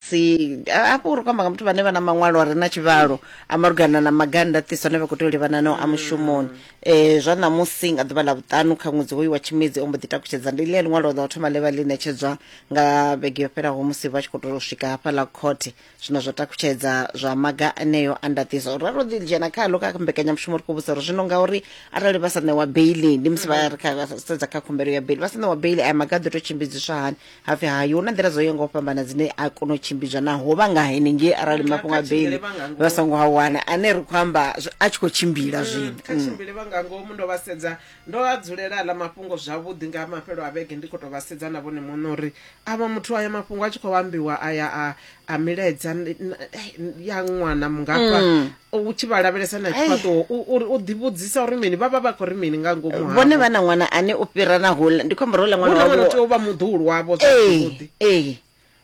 si hafho uri kwamba nga muthu vhane vha na maṅwalo a re na tshivhalo a malugana na maganda ṱiso ane vha khou tea u livhana nao a mushumoni um zwa ṋamusi nga ḓuvha ḽa vhuṱanu kha ṅwedzi hoyu wa tshimedzi o mbo ḓi takutshedza ndi ḽia ḽiṅwalo ḽa u thoma ḽe vha ḽi ṋetshedzwa nga vhege yo fhelaho musi vha tshi khou tou swika hafha ḽa khothe zwino zwa takutshedza zwa maga aneyo a ndaṱiso ro ro ḓi dzhena khaḽo kha mbekanyamushumo ri khou vhusa uri zwino ngauri arali vha sa ṋewa beili ndi musi vha ri kha sedza kha khumbelo ya beili vha sa ṋewa beili aya maga a ḓo tou tshimbidziswa hani hapfi hayi hu na nḓila dzo yaho nga u fhambana dzine a kona u tshimbidzwa na ho vha nga henengei arali Nga mafhungo a kha beili tshimbile vha nga ngomu. vha songo a wana ane ri khou amba zwi- a tshi khou tshimbila zwino kha Mm. tshimbile vha nga ngomu ndo vha sedza ndo a dzulela aḽa mafhungo zwavhuḓi nga mafhelo a vhege ndi khou tou vha sedza na vhone muṋe uri avha muthu aya mafhungo a tshi khou ambiwa aya a, a milaedza n- n- ya ṅwana mungafha Mm. u tshi vha lavhelesa na tshifhaṱuwo u- uri u ḓivhudzisa uri mini vha vha vha khou ri mini nga ngomu havho. vhone vha na ṅwana ane o fhira na hula ndi khombo ro ula ṅwana huna wana wavho tea u vha muḓuhulu wavho ee zwavhuḓi ee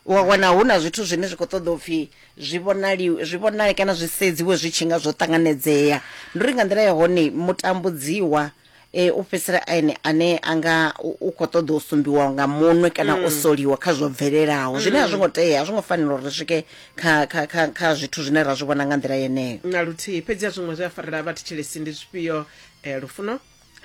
wa wana hu na zwithu zwine zwi khou ṱoḓa upfhi zwi vhonali zwi vhonale kana zwi sedziwe zwi tshi nga zwo ṱanganedzea ndi uri nga nḓila ya hone mutambudziwa e u fhedzisela ene ane a nga u- u khou ṱoḓa u sumbiwa nga munwe kana o soliwa kha zwo bvelelaho zwine a zwo ngo tea a zwo ngo fanela uri ri swike kha kha kha kha zwithu zwine ra zwi vhona nga nḓila yeneyo na luthihi fhedzi a zwiṅwe zwi a farela vha thetshelesi ndi zwifhio um lufuno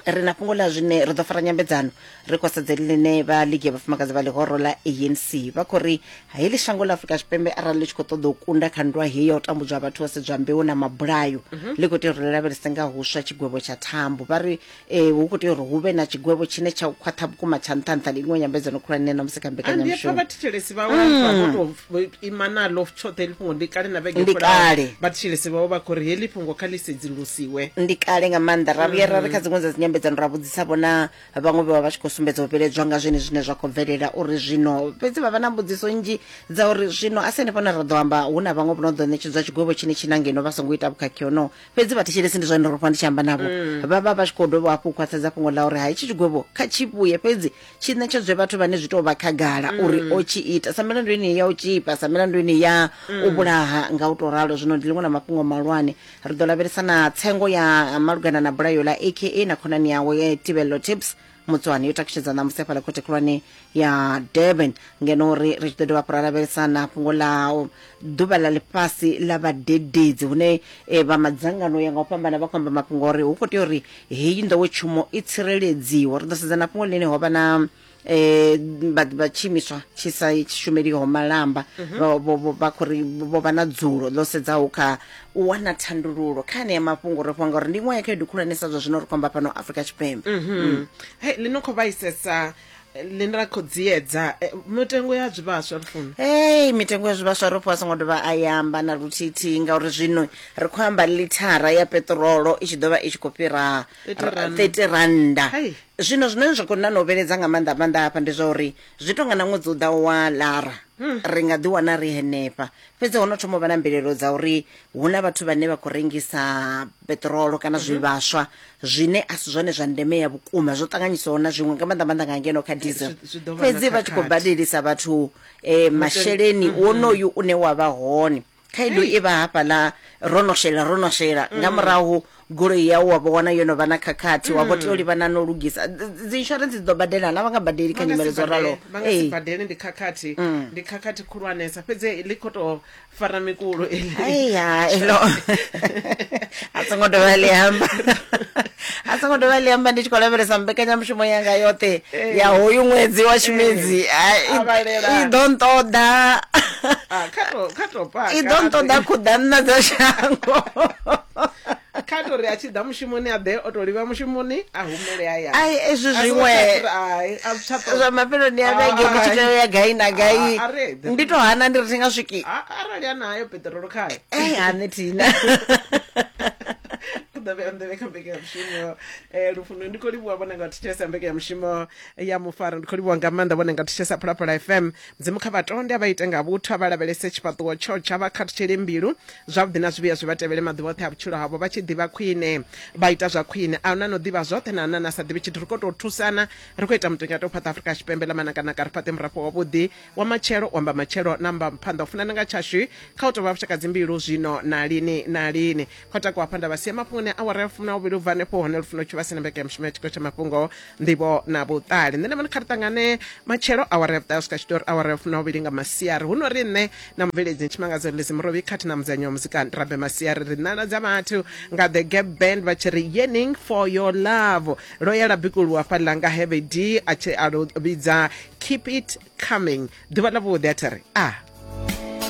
ri na fhungo ḽa zwine ri ḓo fara nyambedzano ri khosedzeli ḽine vha ligi ya vhafumakadzi vha ḽihoro ḽa anc vha khou ri heḽi shango ḽa afurika tshipembe arali ḽi tshi khou ṱoḓa u kunda kha nndwa heyi ya u tambudzwa vhathu vha sedzwa mbeu na mabulayo mhm. ḽi khou tea uri ḽi lavhelese nga huswa tshigwevho tsha thambo vha ri um hu khou tea uri hu vhe na tshigwevho tshine tsha khwaṱha vhukuma tsha nṱha nṱha ndi iṅwe nyambedzano khulwane na musi kha mbekanyamushumo vhathetshelesi vhawe vha vho tou ima naḽo tshoṱhe heḽi fhungo ndi kale na vhege kale vhathetshelesi vhawe vha khou ri heḽi fhungo kha ḽi sedzulusiwe ndi kale nga maanḓa ra vhuya ra ri kha mm. dziṅwe dza dzinyambedzano ra vhudzisa vhona vhaṅwe vha vha vha tshi khou sumbedza u vhiledzwa nga zwene zwine zwa khou bvelela uri zwino fhedzi vha vha na mbudziso nnzhi dza uri zwino a si henefho na ra ḓo amba hu na vhaṅwe vho no ḓo ṋetshedzwa tshigwevho tshine tshi na ngeno vha songo ita vhukhakhi honoho fhedzi vhathetshelesi ndi zwa ndo rofha ndi tshi amba navho mm. vha vha vha tshi khou dovha hafhu u khwaṱhisedza fhungo ḽa uri ha itshi tshigwevho kha tshi vhuye fhedzi tshi ṋetshedzwe vhathu vhane zwi tou vha khagala mm. uri o tshi ita sa milandu yeneyi ya u tshipa sa milandu yeneyi ya mm. u vhulaha nga u tou ralo zwino ndi ḽiṅwe na mafhungo malwane ri ḓo lavhelesa na tsengo ya malugana na bulayo ḽa aka na khonani yawe tibello tips mutswani yo takutshedza ṋamusi hafhaḽa khothe khulwane ya durban ngeno uri ri tshi ḓo dovha hafhu ra lavhelesa na fhungo ḽa ḓuvha ḽa ḽifhasi ḽa vhadededzi hune e, vha madzangano ya nga u fhambana vha khou amba mafhungo uri hu khou tea uri heyi nḓowetshumo i tsireledziwa ri ḓo sedza na fhungo ḽine ho vha na eh vha vha tshimiswa tshi sa shumeliho malamba Mhm. vha- vho- vho- vha khou ri vho vha na dzulo ḽo sedzaho kha u wana thandululo kha anea mafhungo ri fhwa ngauri ndi iṅwe ya khaedu khulwanesa zwa zwino ri khou amba fhano afrika tshipembe Mhm. Mm. Hey, ḽi no khou vhaisesa ḽi ra khou dziedza eh, mitengo ya zwivhaswa lufuna hei mitengo ya zwivhaswa ro fhiwa a songo dovha a yamba na luthithihi ngauri zwino ri khou amba lithara ya peṱirolo i tshi ḓo vha i tshi khou fhira 30 rand. 30 randa Hai. Zwino zwine zwa khou na no vhiledza nga maanḓa maanḓa hafha ndi zwa uri zwi tonga na ṅwedzi u ḓaho wa lara ri nga ḓi wana ri henefha fhedzi ho no thoma u vha na mbilelo dza uri hu na vhathu vhane vha khou rengisa peṱirolo kana zwivhaswa zwine a si zwone zwa ndeme ya vhukuma zwo ṱanganyisiwaho na zwiṅwe nga maanḓa maanḓa nga ngeno kha diesel Zwi- zwi ḓo vha na fhedzi vha tshi khou khakhathi. badelisa vhathu um masheleni wonoyu une wa vha hone khaedu i vha hafhaḽa ro no shela ro no shela mm. nga murahu goloi yau wa vho wana yo no vha na khakhathi wa vho tea u mm. livhana no lugisa dzi insurance dzi ḓo badela na vha nga badeli kha nyimele dzo ralo badeli ndi khakhathi mm. ndi khakhathi khulwanesa fhedzi ḽi khou tou fara mikulo eliya elo a songo dovha ḽi amba a songo dovha ḽi amba ndi tshi khou lavhelesa mbekanyamushumo yanga yoṱhe eh. ya hoyu ṅwedzi wa tshimedzi eh. i ḓo nṱoḓa ah, i ḓo nṱoḓa khuḓa nna dza shango kha to ri a tshi ḓa mushumoni a ḓe o to livha mushumoni a humele haya ai ezwi zwiṅwe zwa mafheloni a vhege ndi tshi tea ya gai na gai ndi to hana ndi ri thi nga swiki arali a nayo peṱirolo khayo ei hane thina ḓovhe nḓevhe kha mbekanyamushumo um eh, lufuno ndi khou livhuwa vhone nga thetshelesa mbekanyamushumo ya mufaro ndi khou livhuwa nga maanḓa vhone nga thetshelesa phalaphala fm mudzimu kha vhatonde a vha ite nga vhuthu a vha lavhelese tshifhaṱuwo tsho tsha vha khathutshele mbilu zwavhuḓi na zwivhuya zwi vha tevhele maḓuvha oṱhe a vhutshilo havho vha tshi ḓivha khwine vha ita zwa khwine a na no ḓivha zwoṱhe na na na sa ḓivhi tshithu ri khou tou thusana ri khou ita mutengo ya tou fhaṱa afrika tshipembe ḽa manakanaka ri fhaṱe murafho wavhuḓi wa matshelo wa mbamatshelo na mbamuphanḓa u funana nga tshashu kha u tovha vhushakadzi mbilu zwino na lini na lini kho takuwa hafha nda vha sia mafhungoni a awara ya fumi na vhuvhili u bva hanefho hone lufuno tshi vha sina mbeke ya mushumo ya tshiko tsha mafhungo nḓivho na vhuṱali nṋe na vhone kha ri ṱangane matshelo awara ya vhuṱahe u swika tshitori awara ya fumi na vhuvhili nga masiari hu no ri nṋe na mubveledzi ntshimangadzo lezi murovhi khathi na mudzanyi wa muzika rabe masiari ri ṋala dza vhathu nga the gap band vha tshi ri yearning for your love ro ya labikuluwa fhaḽa nga havd a tshi a vhidza keep it coming ḓuvha ḽa vhuḓi a thiri a ah.